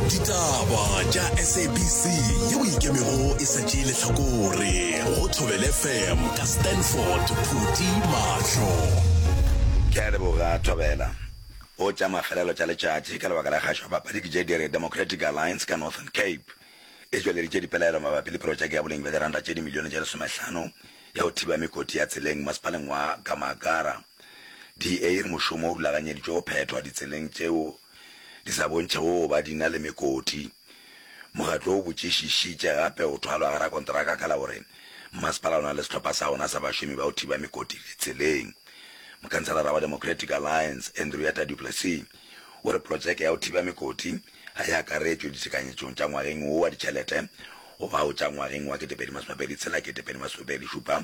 ditaba tša sabc ye o ikemego e sa tšee lehlakore go thobele fm ka stanford phuti mahlo ke a leboga thobela o tša mafelelo tša letšatši ka lebaka la kgašo ya papadi ke je dire democratic alliance ka northern cape e tšweleditše dipelaelo mabapi le projeke ya boleng bja diranta tše dimilione tše lesomehlano ya go thiba mekoti ya tseleng masepaleng wa gamakara DA e re mošomo o rulaganyeditšwe go phethwa ditseleng tšeo di sa bontšhego go ba di na le mekoti. Mokgatlo o botšišišitše gape go thwalwa ga rakonteraka ka la gore mmasepala o na le sehlopha sa ona sa bašomi ba go thiba mekoti ditseleng. Mokhanselara wa Democratic Alliance, Andrietta du Plessis, o re projeke ya go thiba mekoti ga e akaretšwe ditekanyetšong tša ngwageng wo wa ditšhelete go bao tša ngwageng wa 2026-2027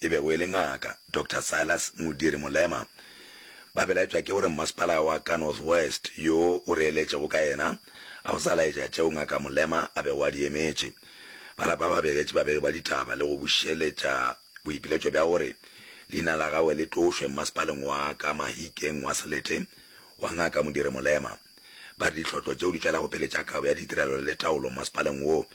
e bego e le Ngaka Doctor Silas Modiri Molema, ba belaetšwa ke gore mmasepala wa ka North West yo o re eletšego ka yena ga o sa laetša tšeo Ngaka Molema a bego a di emetše. Ba lapa ba begetše babegi ba ditaba le go bušeletša boipiletšo bja gore leina la gagwe le tlošwe mmasepaleng wa ka Mahikeng wa Selete wa Ngaka Modiri Molema. Ba re ditlhotlo tšeo di tlela go pele tša kabo ya ditirelo le taolo masepaleng wo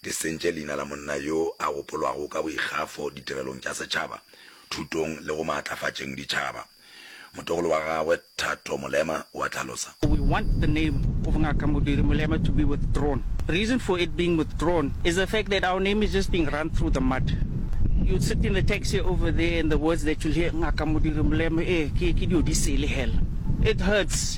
di sentše leina la monna yo a gopolwago ka boikgafo ditirelong tša setšhaba, thutong le go maatlafatšeng ditšhaba. Motogolo wa gagwe Thato Molema o a hlalosa. We want the name of Ngaka Modiri Molema to be withdrawn. Reason for it being withdrawn is the fact that our name is just being run through the mud. You'll sit in the taxi over there and the words that you'll hear Ngaka Modiri Molema, ee, ke, ke diodisele hela. It hurts.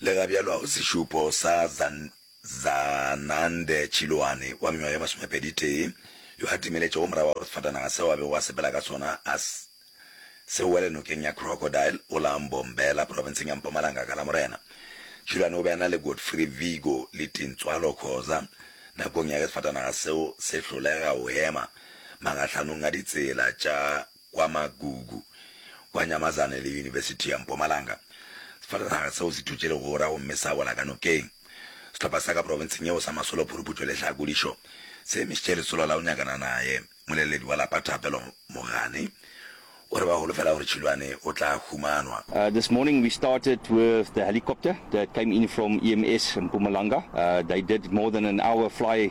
Lega bjalo a go sešupo sa Zanande Chiloane wa mengwaga ye masomepeditee yo a timeletšego morago ga gore sefatanaga seo a bego a sepela ka sona a se wele nokeng ya Crocodile go la Mbombela, profenseng ya Mpumalanga ka Lamorena. Chiloane o be a na le Godfrey Vigo le Tintswalo Khoza nakong ya ge sefatanaga seo se hlolega go hema magahlhanong a ditsela tša kwa Magugu, kwa Nyamazane le Yunibesithi ya Mpumalanga. Sefatanaga seo se thutše legora gomme sa wela ka nokeng. Sehlopha sa ka profenseng yeo sa Masolo Phuruputšo le Hlakodišo se emišitše lesolo la go nyakana naye. Moleledi wa lapa Thapelo Mogane o re ba holofela gore Tšhilwane o tla humanwa. This morning we started with the helicopter that came in from EMS Mpumalanga. They did more than an hour fly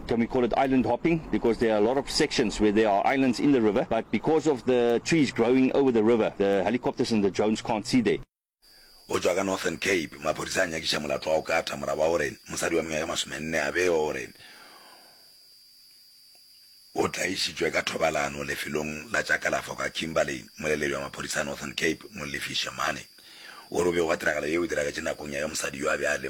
Can we call it island hopping because there are a lot of sections where there are islands in the river but because of the trees growing over the river the helicopters and the drones can't see there. Go tšwa ka Northern Cape, maphodisa a nyakiša molato wa go kata morago ga gore mosadi wa mengwaga e masomenne a bewe gore o tlaišitšwe ka thobalano lefelong la tša kalafo ka Kimberley. Moleledi wa maphodisa a Northern Cape, Mollefi Shemane, o re go bego ga tiragalo yeo e diragetše nakong ya ge mosadi yo a be a le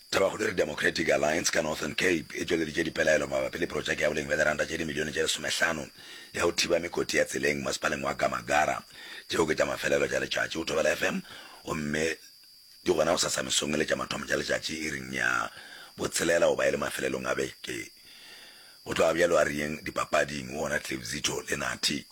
Thabakgolo e re Democratic Alliance ka Northern Cape e tšweleditše dipelaelo mabapi le protšeke ya boleng bja diranta tše dimilione tše lesomehlano ya go thiba mekoti ya tseleng masepaleng wa Gamagara. Tšeo ke tša mafelelo tša letšatši go Thobela FM gomme di gona go sasa mesong e le tša mathomo tša letšatši iring ya botshelela goba e le mafelelong a beke. Go tloga bjalo a riyeng dipapading go wona Cliff Zito le Nathi.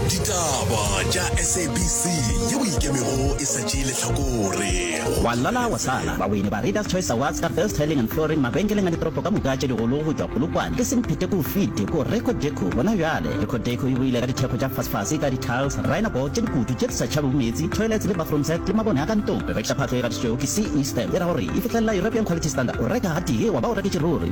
ditaba tša sabc ye o ikemego e sa tšee lehlakore wa lala wa sala bawini ba readers choice awards ka best tiling and flooring mabenkeleng a ditoropo ka moka tše digolo go tšwa polokwane ke semphete ko fiti ko record deco gona bjale record deco e boile ka ditheko tša fasfase ka ditiles rhino board tše dikutu tše di sa tšhabego meetse toilets le bathroom set le mabone a ka ntong re rekiša phatlo e gatišitšwego ke ce stamp e ra gore e fihlelela european quality standard o reka gatee wa ba o reketše ruri